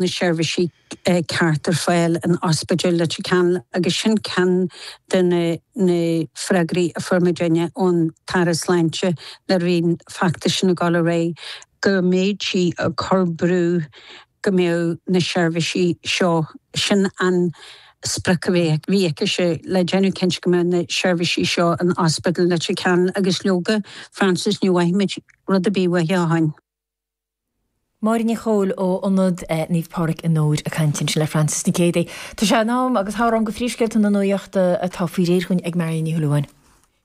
na seirbhísí cearta ar fáil in Ospidéal Leitir Ceanainn agus sin ceann de na freagraí a fuair muidinne ón tAire Sláinte le linn feachtas na Gailearaí go mbeidh sí ag cur brú go mbeadh na seirbhísí seo, sin an sprioc a bhí aicise le déanamh cinnte go mbeadh na seirbhísí seo in Ospidéal Leitir Ceanainn agus leoga, Frances, ní bhfuair muid rud ar bith uaithi ó shin. Máire Ní Chomhaill ó Ionad Naomh Pádraig i nDobhar ag caint ansin le Frances Nic Géadaigh. Tá sé in am agus thár am do phríomhscéalta na nuachta atá faoi réir dhúinn ag Marion Ní Shúilleabháin.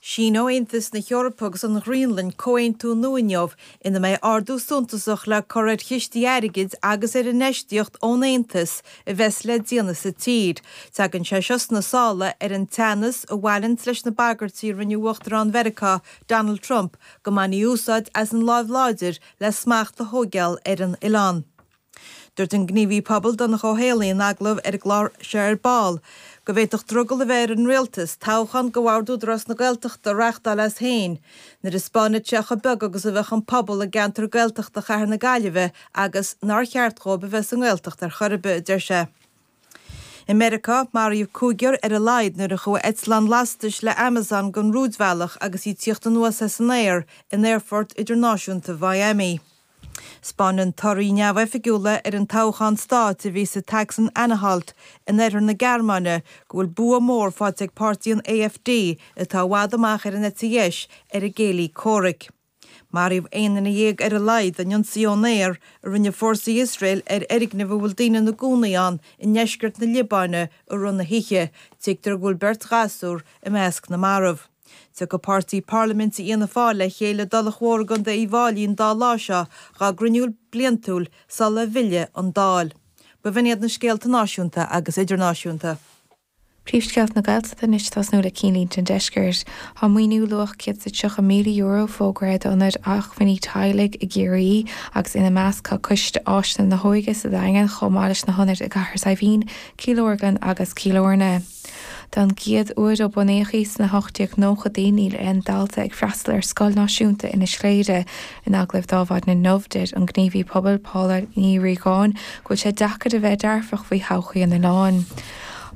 Síneoidh Aontas na hEorpa agus an Ghraonlainn comhaontú nua inniu ina mbeidh ardú suntasach le cur ar chistí airgid agus ar infheistíocht ón Aontas a bheas le déanamh sa tír. Tagann sé seo sna sála ar an teannas a bhaineanns leis na bagairtí a rinne Uachtarán Mheiriceá Donald Trump go mbainfí úsáid as an láimh láidir le smacht a thóigeáil ar an oileán. Dúirt an gníomhaí pobail Donncha Ó hÉallaithe in agallamh ar an gclár seo ar ball go bhféadfadh drogall a bheith ar an Rialtas toghchán do bhord Údarás na Gaeltachta a reáchtáil as féin nuair a 'spáinfeadh sé chomh beag agus a bheadh an pobal i gceantar Gaeltachta chathair na Gaillimhe agus nár cheart dhóibh a bheith sa nGaeltacht ar chor ar bith', a deir sé. I Meiriceá, maraíodh cúigear ar a laghad nuair a chuaigh eitleán lastais le Amazon den rúidbhealach agus í ag tíocht anuas as an aer in Aerfort Idirnáisiúnta Mhiami. 'Spáineann torthaí neamhoifigiúla ar an toghchán stáit a bhí sa tSacsain-Anhalt in oirthear na Gearmáine go bhfuil bua mór faighte ag páirtí an AfD atá i bhfad amach ar an eite dheis ar a gcéilí comhraic. Maraíodh aon duine dhéag ar a laghad in ionsaí ón aer a rinne fórsaí Iosrael ar fhoirgneamh a bhfuil daoine ina gcónaí ann i ndeisceart na Liobáine i rith na hoíche, tuigtear go bhfuil beirt ghasúr i measc na marbh. Tiocfaidh páirtí parlaiminte Fhianna Fáil le chéile i dTulach Mhór i gContae Uíbh Fháilí an dá lá seo dá gcruinniú bliantúil sula bhfillfidh an Dáil. B'in iad na scéalta náisiúnta agus idirnáisiúnta. Príomhscéalta na Gaeltachta anois ag tosnú le Cinnlínte an Deiscirt. Tá maoiniú luach €130,000 fógraithe d'ionaid acmhainní teaghlaigh i gCiarraí agus ina measc tá Coiste Áiseanna na hÓige sa Daingean chomh maith leis na hionaid i gCathair Saidhbhín, Cill Orglan agus Cill Airne. Don gcéad uair ó bunaíodh í sna hocht-déag-nóchadaí níl aon dalta ag freastal ar Scoil Náisiúnta Inis Chléire. In agallamh ar Adhmhaidin inniu deir an gníomhaí pobail Paula Ní Riagáin go bhfuil sé deacair a bheith dearfach faoi thodhchaí an oileáin.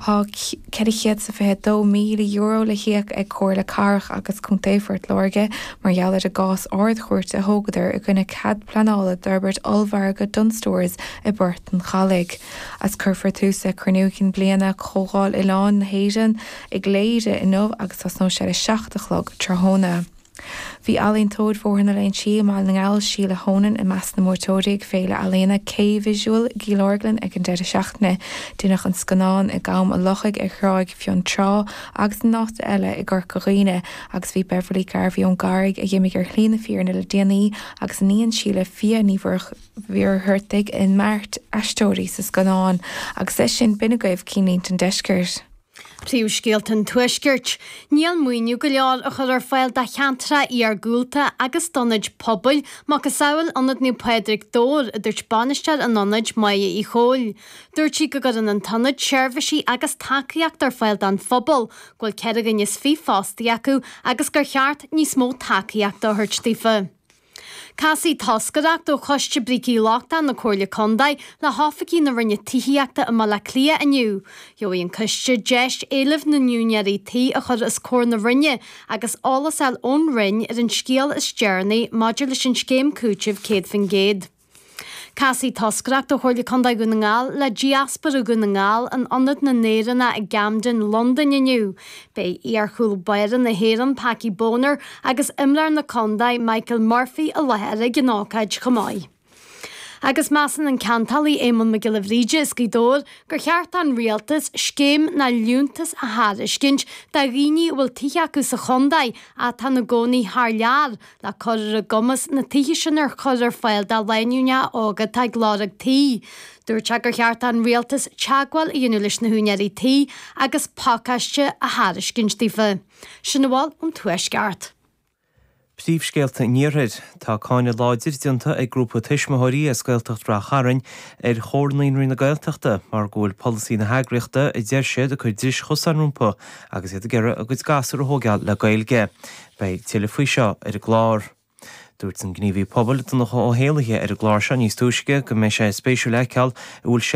Tá €422,000 le híoc ag Comhairle Cathrach agus Contae Phort Láirge mar gheall ar an gcás Ard-Chúirte a thógadar i gcoinne cead pleanála d'fhorbairt ollmhargadh Dunnes Stores i bPort an Chalaidh, as. Cuirfear tús le Cruinniú Cinn Bliana Chomhdháil Oileáin na hÉireann i gCléire inniu agus tosnóidh sé ar a seacht a chlog tráthnóna. Bhí ealaíontóir Bhóthar na Léinsí i mBaile na nGall, Síle Honan, i measc na mbuaiteoirí ag féile ealaíona K-Visual i gCill Orglan ag an deireadh seachtaine. Deineadh an scannán i gCam a' Lochaigh ar Thráigh Fionntrá agus in áiteanna eile i gCorca Dhuibhne agus bhí Beverly Garvey ón gCarraig, a d'imigh ar shlí na fírinne le déanaí, agus a iníon Síle Fia Ní Mhuircheartaigh ina mbeirt aisteoirí sa scannán, agus leis sin b'in agaibh cinnlínte an deiscirt! Príomhscéalta an Tuaiscirt, Níl maoiniú go leor á chur ar fáil do cheantracha iargúlta agus d'ionaid pobail, macasamhail Ionad Naomh Pádraig, Dobhar, a dúirt bainisteoir an ionaid, Máire Uí Chomhaill. Dúirt sí go gcuireann an t-ionad seirbhísí agus tacaíocht ar fáil don phobal, go bhfuil ceithre dhuine is fiche fostaí acu agus gur cheart níos mó tacaíochta a thabhairt daofa. Casfaidh toscaireacht ó Choiste Brící Lochtáin na Comhairle Contae le hoifigigh na Roinne Tithíochta i mBaile Átha Cliath inniu. Gheobhaidh an coiste deis éilimh na n-úinéirí tí a chur os comhair na Roinne agus eolas a fháil ón Roinn ar an scéal is deireanaí maidir leis an scéim cúitimh 100%. Casfaidh toscaireacht ó Chomhairle Contae Dhún na nGall le Diaspóra Dhún na nGall in Ionad na nÉireannach i gCamden, Londain inniu. Beidh iarchúl báire na hÉireann, Packie Bonner, agus imreoir na contae, Michael Murphy, i láthair ag an ócáid chomh maith. Agus measann an ceantálaí Éamonn Mac Giolla Bhríde as Gaoth Dobhair gur cheart don Rialtas scéim nó liúntas a thairiscint do dhaoine a bhfuil tithe acu sa chontae ach atá ina gcónaí thar lear, Lena chur ar a gcumas na tithe sin a chur ar fáil do lánúineacha óga atá ag lorg tí. Dúirt sé gur cheart don rialtas teagmháil a dhéanamh leis na húinéirí tí agus pacáiste a thairiscint daofa. Sin a bhfuil ón Tuaisceart. Príomhscéalta an Iarthair. Tá cáineadh láidir déanta ag grúpa tuismitheoirí as Gaeltacht Rath Chairn ar Chomhar Naíonraí na Gaeltachta mar go bhfuil polasaí na heagraíochta a deir siad ag cur dris chosáin rompu agus iad ag iarraidh a gcuid gasúr a thóigeáil le Gaeilge. Beidh tuilleadh faoi seo ar an gclár. Dúirt an gníomhaí pobail Donncha Ó hÉallaithe ar an gclár seo níos túisce go mbeidh sé spéisiúil a fheiceáil an bhfuil